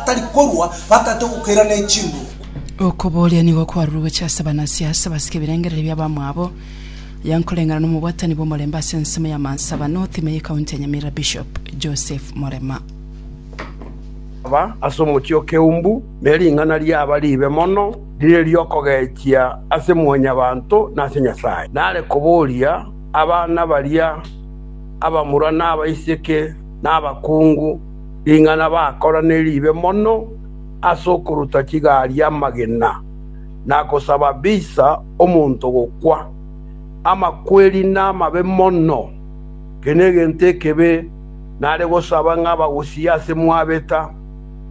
atari korua, bataete ogokeira ne chinguru. Okobooria nigo kwarure gochia ase abanasiasa basike ebirengererio bi'abamwabo, aya nkoreng'ana nomobwatani bw'omorembe ase ensemo y'amansa aba North ime y'ekaunti ya Nyamira Bishop Joseph Morema. Aba ase omochie o Keumbu, ne ring'ana riaba riibe mono, rire ri'okogechia ase mwanyabanto na ase Nyasae. Nare koboria abana baria abamura na abaiseke na abakungu, Ring'ana bakorane ribe mono ase okoruta chigari amagena, na gosaba bisa omonto gokwa. Amakweri namabe mono, eke negento ekebe, nare gosaba ng'a abagusie ase mwabeta.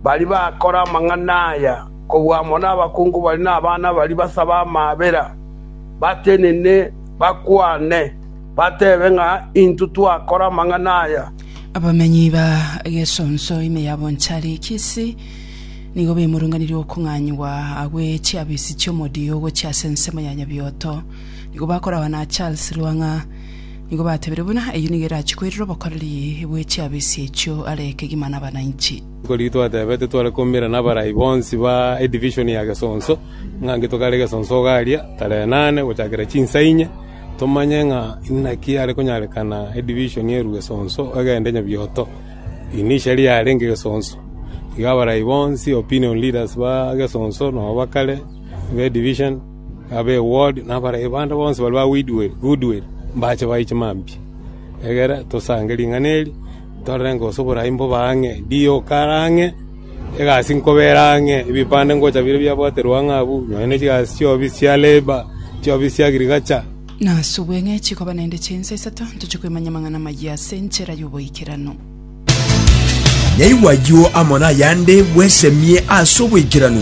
Baria bakora amang'ana aya kobua amo nabakungu baria na abana baria basabe amaabera, batenene, bakwane, batebe ng'a, Intwe twakora amang'ana aya. Abamenyi ba Gesonso ime ya Bonchari, Kisii, nigo baimorunganirie okong'anyigwa agwo e chiabisi chi'omodio gochia ase ensemo ya Nyabioto. Nigo bakoragwa na Charles Lwang'a. Nigo batebirie buna eyio nigo erachie koirera obokoreri bwe chiabisi echio are kegima nabananchi. Nkorigia twatebete tware koumera nabarai bonsi ba edivision ya Gesonso ng'a nki tokare Gesonso ogaria tarehe nane gochakera chinsa inye. Tomanye ng'a inaki yare konyarekana edivision erue esonso egende nyabioto. Initially yarenge gesonso, igo abarai bonsi, opinion leaders ba gesonso na ba kare, be division, abe ward na abarai bande bonsi baria ba weedwell, goodwill, mbache baye chimambia. Egere tosange ring'ana eri, torore ng'a gose oborai mbobe ang'e, Dio kare ang'e. Egasi nkobeera ang'e, ebipande ngocha bire biabwaterwe ang'e abwo, nonya ne chigasi chi'obobi chia Leba, chi'obobi chia Agriculture, Nasubwe ng'e chikoba naende chinsa isato, ntoche koimanya amang'ana amayia ase enchera y'oboikeranu. Nyaigwa ayio amo nayande bwesemie ase oboikeranu.